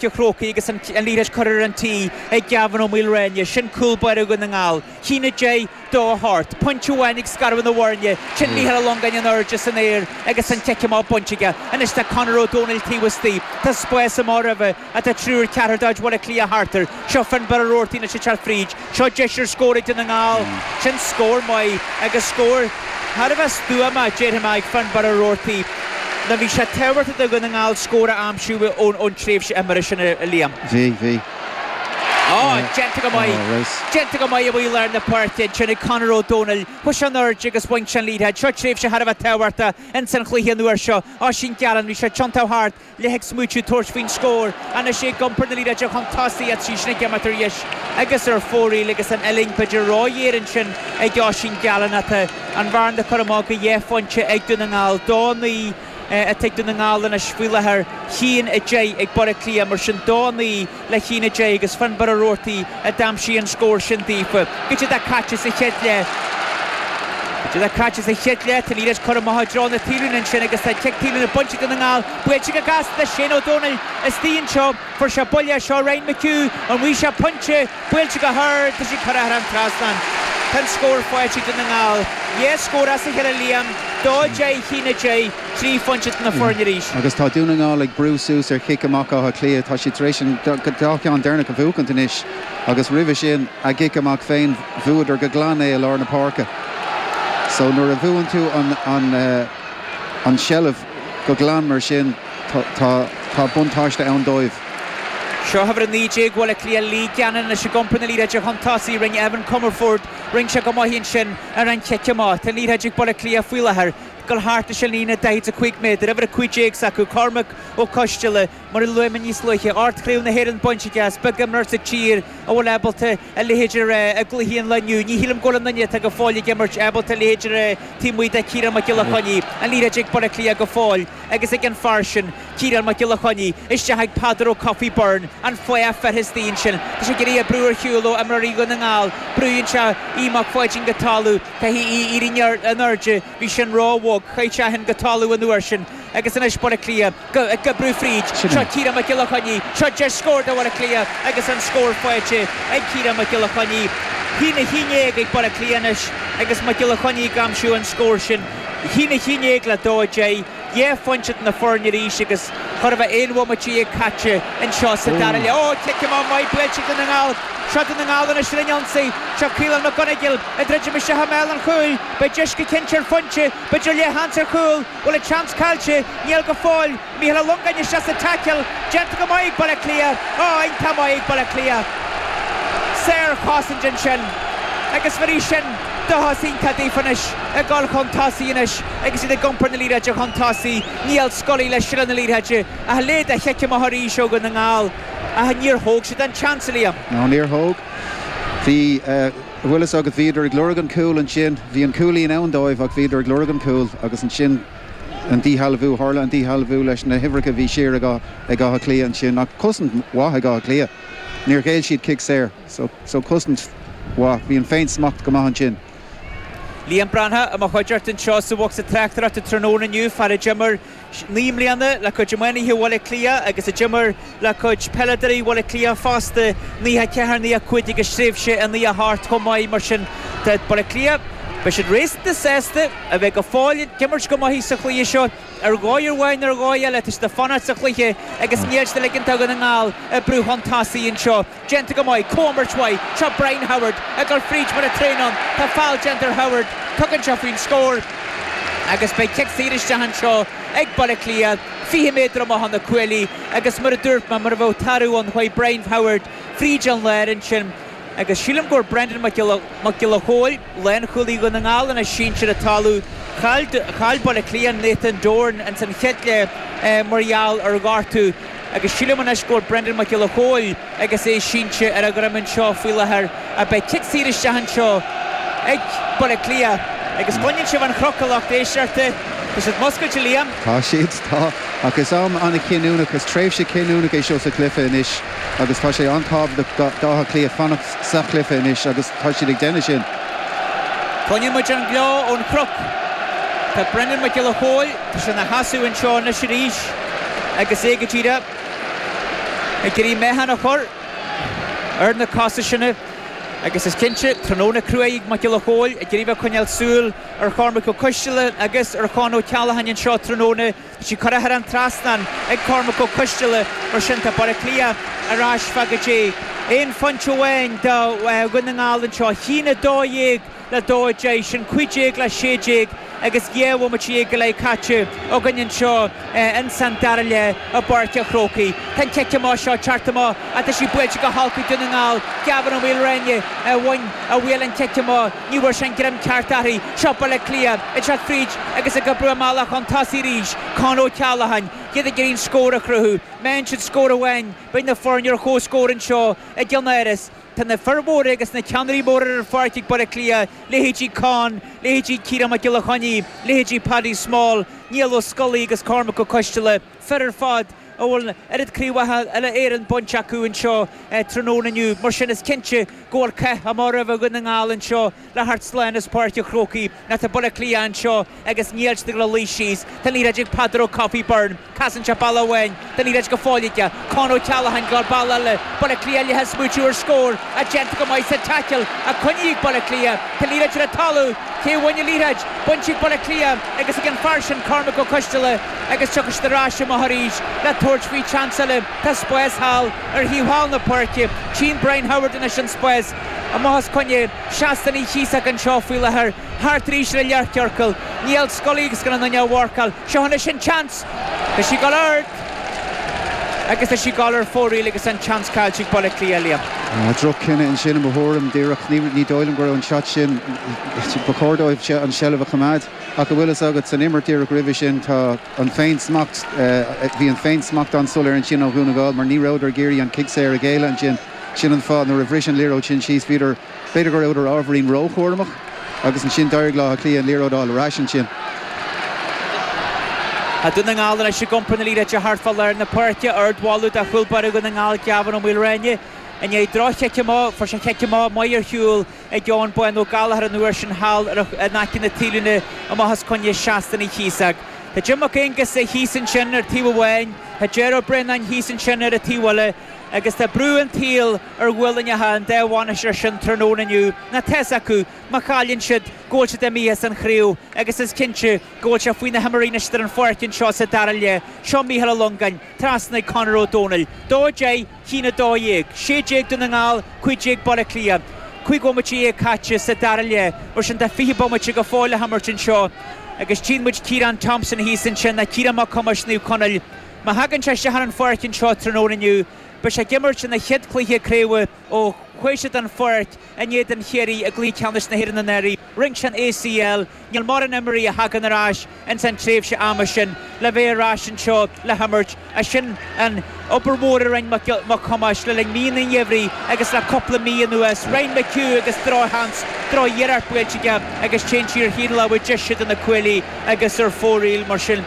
an Chrócaigh agus an liathróid curtha ar an tí ag Gavin Ó Maoilreáine, sin cúl báire Dhún na nGall. A haon a deich, dó a hocht. Pointe amháin ag scaradh na bhfoirne, sin Michael Ó Longáin in airde san aer agus an cic amach bainte aige. Anois tá Conor Ó Dónaill taobh istigh, tá spás amach roimhe, tá triúr, ceathrar de chuid Bhaile Átha Cliath thart air. Seo Finnbarr Roarty anois ag teacht fríd. Seo deis ar scór do Dhún na nGall. Sin scór maith agus scór thar a bheith stuama, déarfainn, ag Finnbarr Roarty. Nó bhí sé tábhachtach do Dhún na nGall scór a aimsiú ón tréimhse imeartha sin, a Liam. Bhí, bhí. Ó, déanta go maith. Déanta go maith amuigh i lár na páirce ansin ag Conor Ó Domhnaill. Chuaigh sé in airde agus bhain sé an liathróid. Seo tréimhse thar a bheith tábhachtach insan chluiche an uair seo. Oisín Gallen, bhí sé ag tiontú thart. leath ag smaoitiú tabhairt faoin scór. Anois é ag iompar na liathróide chun tosaigh ach tá sí sin ag imeacht ar dheis agus ar fóraoil agus an uillinn b'fheidir róghéar ansin ag Oisín Gallen ach tá an bhearna curtha amach go dhá phointe ag Dún na nGall, dó a naoi atá ag Dún na nGall anois faoi láthair, a haon a deich ag Baile Átha Cliath, mar sin dó a naoi. le haon a deich agus Finnbarr Roarty a d'aimsigh an scór sin daofa. B'in iad a caite sa chéad leath. B'in iad a caite sa chéad leath. Tá an liathróid curtha amach i dtreo na taobhlíne ansin agus tá cic taobhlíne bainte ag Dún na nGall. Buailte go gasta do Shane Ó Domhnaill istigh anseo. Fuair sé buille as seo Ryan McHugh. An bhfaighidh sé pointe? Buailte go hard. Tá sé curtha thar an trasnán. Tá an scór faighte ag Dún na nGall. Dhá scór as a chéile Liam. 2-10 a haon a deich. trí phointe idir na foirne arís. Agus tá Dún na nGall ag brú suas ar chic amach Átha Cliath. Tá siad tar éis an dá cheann deireanach a bhuachaint anois agus roimhe sin a gcic amach féin, bhuadar go glan é i lár na páirce. So nuair a bhuann tú an seilbh go glan mar sin, tá buntáiste ann dóibh. Seo uimhir a naoi déag Bhaile Átha Cliath, Lee Gannon ag iompar na liathróide chun tosaigh. Rinne Evan Comerford, rinne sé go maith ansin ar an chic amach. Tá an liathróid ag Baile Átha Cliath faoi láthair. gabháil thart is an líne 45 méadar, uimhir 15 s'acu, Cormac Ó Coisteala, mar a luaigh mé níos luaithe, ocht gCraobh na hÉireann bainte aige, is beag imreoir sa tír a bhfuil ábalta a leithéid a rá i gcluichí an lae inniu. Ní shílim go bhfuil aon duine atá go fóill ag imirt ábalta a leithéid a rá taobh amuigh de Chiarán Mac Giolla Chainnigh, an liathróid ag Baile Átha Cliath go fóill agus ag an fhear sin. Ciarán Mac Giolla Chainnigh isteach ag Peadar Ó Cofaigh Byrne, an fathach fir istigh ansin. Tá sé ag iarraidh a brú ar shiúl ó imreoirí Dhún na nGall. Brúnn sé Aodh Mac Pháidín go talamh. Caithfidh Aodh éirí in airde. Bhí sin ró bhog. Chaith sé eisean go talamh an uair sin. Agus anois Baile Átha Cliath ag brú fríd. Seo Ciarán Mac Giolla Chainnigh. Seo deis scór do Bhaile Átha Cliath agus an scór faighte ag Ciarán Mac Giolla Chainnigh. A haon a haon déag ag Baile Átha Cliath anois agus Mac Giolla Chainnigh ag aimsiú an scór sin. A haon a haon déag le dó a deich. Dhá phointe idir na foirne arís agus chóir a bheith aon bhomaite dhéag caite anseo sa dara leath. Ó, cic amach maith buailte ag Dún na nGall. Seo Dún na nGall anois ar an ionsaí. Seo Caolan McGonagle ag druidim isteach i mbéal an chúil. Beidh deis go cinnte ar phointe. B'fhéidir leathsheans ar chúl. Bhfuil an tseans caillte? Níl go fóill. Mícheal Ó Longáin isteach sa tackle. Déanta go maith ag Baile Átha Cliath. Á, iontach maith ag Baile Átha Cliath. Sárchosaint ansin agus bhéarfaidh sin dóchas iontach daofa anois ag dul chun tosaigh anois. Agus iad ag iompar na liathróide chun tosaigh, Niall Scully le seilbh na liathróide ach leithéid de chic amach arís ó Dhún na nGall ach níor thóg siad an tseans, a Liam. No, níor thóg. Bhí, bhfuil 'fhios agat, bhíodar ag lorg an cúl ansin, bhí an cúilín ann dóibh ach bhíodar ag lorg an cúl agus ansin an díshealbhú, tharla an díshealbhú leis na huimhreacha a bhí siar ag ag Áth Cliath ansin ach cosaint mhaith ag Áth Cliath, níor ghéill siad cic saor so, so cosaint mhaith, bhí an féin-smacht go maith ansin. Liam Breathnach i mo chuideachta anseo sa bhocsa tráchtaireachta tráthnóna inniu, fear a d'imir naoi mbliana le cuid iománaithe Bhaile Cliath agus a d'imir le cuid peileadóirí Bhaile Cliath fosta, 94, 95 agus tréimhse i 98 chomh maith mar sin do Bhaile Cliath. Beidh siad réasúnta sásta a bheith go fóill ag imirt go maith sa chluiche seo. Ar dhóigh amháin nó ar dhóigh eile tá siad ag fanacht sa chluiche agus níl siad ag ligint do Dhún na nGall brú chun tosaigh anseo. Déanta go maith, comhimirt mhaith, seo Brian Howard ag dul fríd mar a bheadh traein ann, tá feall déanta ar Howard, tugann sé faoin scór agus beidh cic saor isteach anseo ag Baile Átha Cliath, 20 méadar amach ó na cuaillí agus mar a dúirt mé, mar a bheadh tarbh ann chuaigh Brian Howard fríd an láir ansin agus sílim go bhfuil Brendan Mac Giolla Chóill. Lánchúlaí Dhún na nGall anois sínte ar an talamh. Chaill Baile Átha Cliath Nathan Doran ins an chéad leath mar gheall ar ghortú agus sílim anois go bhfuil Brendan Mac Giolla Chóill agus é sínte ar a dhroim anseo faoi láthair ach beidh cic saor isteach anseo ag Baile Átha Cliath agus baineann siad an chroch i Loch Déisdearta. Tá siad múscailte, Liam. Tá siad, tá. Ach is am an-chinniúnach, is tréimhse chinniúnach é seo sa chluiche anois agus tá sé an-tábhachtach d'Átha Cliath fanacht sa chluiche anois agus, Tá siad ag déanamh sin. Cluineann muid an gleo ón Chnoc. Tá Brendan Mac Giolla Chóill tá sé ina sheasamh anseo anois arís agus é go díreach ag iarraidh meáchan a chur ar na cosa sin agus is cinnte, tráthnóna crua ag Mac Giolla Chóill, ag iarraidh a choinneáil súil ar Chormac Ó Coistealla agus ar Chonn Ó Ceallacháin anseo tráthnóna. Tá sí curtha thar an trasnán ag Cormac Ó Coisteala mar sin tá Baile Átha Cliath ar ais fá go dtí aon phointe amháin de Dhún na nGall anseo. 1 12 le 2 10, sin 15 le 16 agus dhá bhomaite dhéag go leith caite againn anseo ins an dara leath i bPáirc a' Chrócaigh. Tá an cic amach seo curtha amach ach tá sí buailte go holc ag Dún na nGall. Gavin Ó Maolruanaidh a bhain a bhuail an cic amach. Ní bhfuair sé an greim ceart uirthi. Seo Baile Átha Cliath ag teacht fríd agus ag oibriú a mbealach chun tosaigh arís. Conn Ó Ceallacháin, iad ag iarraidh an scór a chruthú. Má fhaigheann siad scór amháin beidh na foirne ar chomhscór anseo i gCeannáras. Tá na fir mhóra agus na ceannairí móra ar an pháirc ag Baile Átha Cliath, leithéidí Conn, leithéidí Ciarán Mac Giolla Chainnigh, leithéidí Paddy Small, Niall Ó Scolaí agus Cormac Ó Coisteala. fir ar fad a bhfuil an oiread craobhacha uile-Éireann bainte acu anseo tráthnóna inniu. Mar sin, is cinnte go bhfuil cath amach roimh Dhún na nGall anseo le theacht slán as Páirc an Chrócaigh. Ná tá Baile Átha Cliath anseo agus níl siad ag dul a luí síos. Tá an liathróid ag Peadar Ó Cofaigh Byrne. Casann sé bealach amháin, tá an liathróid go fóill aige. Con Ó Ceallacháin ag dul bealach eile. Baile Átha Cliath leath ag smaoitiú ar scór. Ach déanta go maith sa taicil a choinnigh Baile Átha Cliath. Tá an liathróid ar an talamh. Cé a bhain an liathróid? Bainte ag Baile Átha Cliath agus ag an fear sin Cormac Ó Coisteala. agus tiocfaidh siad ar ais amach arís le tabhairt faoi tseans eile. Tá spás thall ar thaobh thall na páirce. Tchíonn Brian Howard anois an spás amach os coinne Sheastán Uí Chíosóg anseo faoi láthair, thart arís ar an leathchiorcal. Niall Scully agus gan aon duine á mharcáil. Seo anois an tseans. Tá sí ag dul ard agus tá sí ag dul ar fóraoil agus an tseans caillte ag Baile Átha Cliath a Liam. Droch-chinneadh ansin i mo thuairim, díreach ní dóigh liom go raibh an shot sin, ba chóir dóibh an tseilbh a choimeád. Ach an bhfuil a fhios agat, san imirt díreach roimhe sin, tá an féinsmacht, bhí an féinsmacht an-soiléir ansin ó Dhún na nGall mar ní rabhadar ag iarraidh an cic saor a ghéilleadh ansin. Sin an fáth, nuair a bhris an liathróid sin síos, bhíodar, b'fhéidir go rabhadar ábhairín ró-chúramach agus ansin d'éirigh le Áth Cliath an liathróid a fháil ar ais ansin. Tá Dún na nGall ar ais ag iompar na liathróide thart fá lár na páirce. Ard-mholadh do chúl báire Dhún na nGall, Gavin Ó Maolruanaidh, i ndiaidh droch-chic amach. Fuair sé cic amach maith ar shiúl. ag Eoghan Bán Ó Gallchóir an uair sin thall in aice na taobhlíne amach os coinne Sheastán Uí Chíosóg. Tá Jim Mac Aonghusa thíos ansin ar taobh amháin, tá Ger Ó Braonáin thíos ansin ar an taobh eile agus tá brú an tsaoil ar ghuailneacha an dá bhainisteoir sin tráthnóna inniu. Ná tá a fhios acu má chailleann siad go bhfuil siad imithe as an chraobh agus is cinnte go bhfuil sé faoi na himreoirí anois atá ar an pháirc anseo sa dara leath. Seo Mícheál Ó Longáin, trasna chuig Conor Ó Dónaill, dó J. cinn 12, 16 Dún na nGall, 15 Baile Átha Cliath. Cúig bhomaite dhéag caite sa dara leath, mar sin tá fiche bomaite go fóill le himirt anseo agus tchíonn muid Ciarán Thompson thíos ansin ná Ciarán Mac Thomáis Naomh Conaill. Má thagann sé isteach ar an pháirc anseo tráthnóna inniu, beidh sé ag imirt ina chéad chluiche craobha ó chuaigh sé den pháirc, In éadan Chiarraí i gcluiche ceannais na hÉireann anuraidh, rinne sé an ACL, níl mórán imreoirí a thagann ar ais ins an tréimhse ama sin le bheith ar ais anseo le himirt, ach sin an obair mhór a rinne Mac Thomáis le linn míonna an gheimhridh agus le cúpla mí anuas. Ryan McHugh agus drochsheans, droch-iarracht buailte aige agus téann sí ar thaobh na láimhe deise de na cuaillí agus ar fóraoil mar sin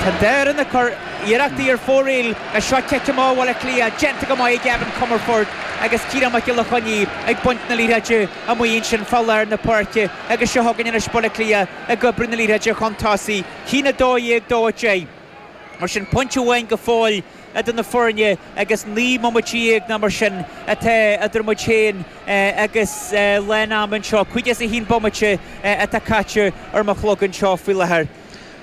tá deireadh na. Iarrachtaí ar fóraoil is an cic amach ó Bhaile Átha Cliath déanta go maith ag Evan Comerford agus Ciarán Mac Giolla Chainnigh ag baint na liathróide amuigh ansin fá lár na páirce agus seo chugainn anois Baile Átha Cliath ag oibriú na liathróide chun tosaigh. A haon 12, dó 10. Mar sin, pointe amháin go fóill idir na foirne agus naoi mbomaite dhéag ná mar sin atá idir muid féin agus lán ama anseo. Caoga is a haon bomaite atá caite ar mo chlog anseo faoi láthair.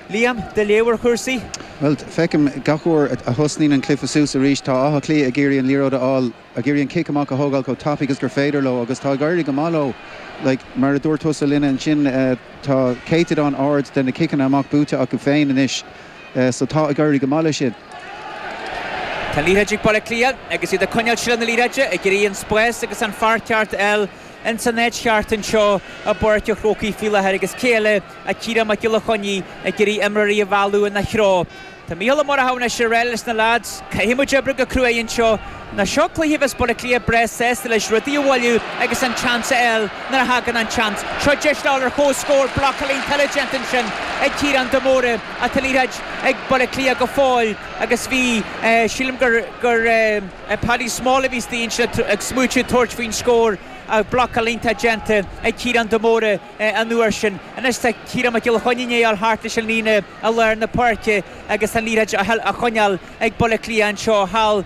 Liam, do léamh ar chúrsaí? Bhuel, feicim gach uair a thosnaíonn an cluife suas arís, tá Áth Cliath ag iarraidh an liathróid a fháil, ag iarraidh an cic amach a thógáil chomh tapaidh agus gur féidir leo agus tá ag éirí go maith leo. Like, mar a dúirt tusa linne ansin, tá céatadán ard de na ciceanna amach buaite acu féin anois so tá ag éirí go maith le sin. Tá an liathróid ag Baile Átha Cliath agus iad ag coinneáil seilbh na liathróide, ag iarraidh an spás agus an fear ceart a fháil ins an áit cheart anseo i bPáirc an Chrócaigh faoi láthair agus cé eile Tá Ciarán Mac Giolla Chainnigh ag iarraidh imreoirí a mhealladh ina threo. Tá Micheál Ó Murchadha anois ag rá leis na leaids. Caithfidh muid oibriú go cruaidh anseo. Nó seo cluiche a bheas Baile Átha Cliath breá sásta leis rudaí a mhoilliú agus an tseans a fháil nuair a thagann an tseans. Seo deis le ghabháil ar chomhscór. Blocáil iontach uilig déanta ansin ag Ciarán de Mórdha ach tá an liathróid ag Baile Átha Cliath go fóill agus bhí, sílim gur Paddy Small a bhí istigh ansin ag smaoitiú tabhairt faoin scór. Blocáil iontach déanta ag Ciarán de Mórdha. an uair sin. Anois tá Ciarán Mac Giolla Chainnigh ag gabháil thart leis an líne i lár na páirce agus an liathróid á choinneáil ag Baile Átha Cliath anseo thall.